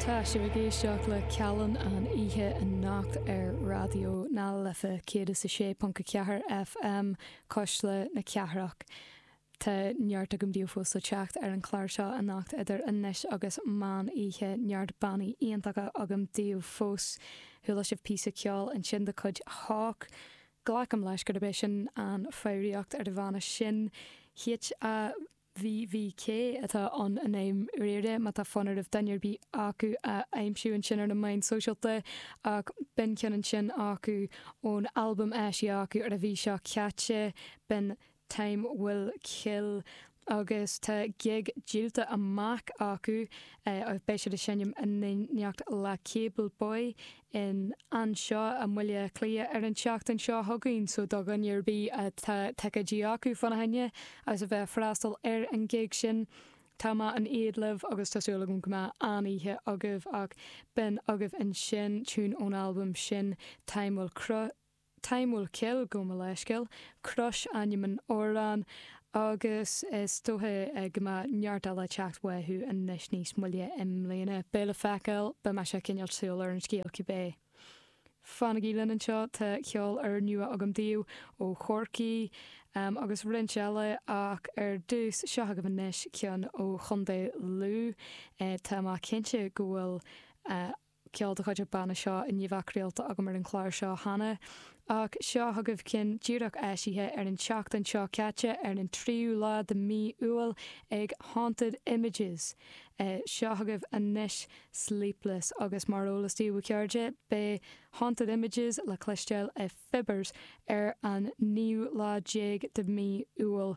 Tá sibh ag éisteacht le Callan an Oíche anocht ar Raidió na Life 106.4 FM, Cuisle na Cathrach. Tá neart agam daoibh go fóill fós le teacht ar an chlár seo anocht idir anois agus meán oíche, neart bannaí iontacha agam daoibh fós. Chuala sibh píosa ceoil ansin de chuid Hauch. Glacaim leis gurb é sin an foghraíocht ar an bhanna sin. H-a-u-c-h. VVK, atá ann i ndáiríre má tá fonn oraibh duine ar bith acu a aimsiú ansin ar na meáin sóisialta, ach b'in ceann ansin acu ón albam a eisíodh acu ar an mhí seo caite, b'in Time Will Kill agus tá gig díolta amach acu, beidh siad ag seinm in éineacht le Cable Boy in anseo i mBaile Cliath ar an tseachtain seo chugainn so do dhuine ar bith atá ticéidí acu fána choinne agus a bheidh ag freastal ar an ghig sin tá mé in éad libh agus tá súil agam go mbeidh an-oíche agaibh ach b'in agaibh ansin tiún ón albam sin Time Will Cry. Time Will Kill gabh mo leithscéal, Cross ainm an amhráin agus is dócha go mbeidh neart eile teacht uathu anois níos moille i mbliana. Beidh le feiceáil. Beidh mise ag coinneáil súil ar an scéal cibé. Fanaigí linn anseo, tá ceol úr nua agam daoibh ó Chorcaí agus roinnt eile ach ar dtús, seo agaibh anois ceann ó Chontae Lú, tá mé cinnte go bhfuil a ceol de chuid an bhanna seo i ndiaidh bheith craolta agam ar an chlár seo cheana, ach seo chugaibh ceann díreach eisithe ar an tseachtain seo caite, ar an tríú lá de mhí Iúil, ag Haunted Images. Seo chugaibh anois Sleepless, agus mar eolas daoibh, a chairde, beidh Haunted Images le cloisteáil i Fibbers ar an naoú lá déag de mhí Iúil,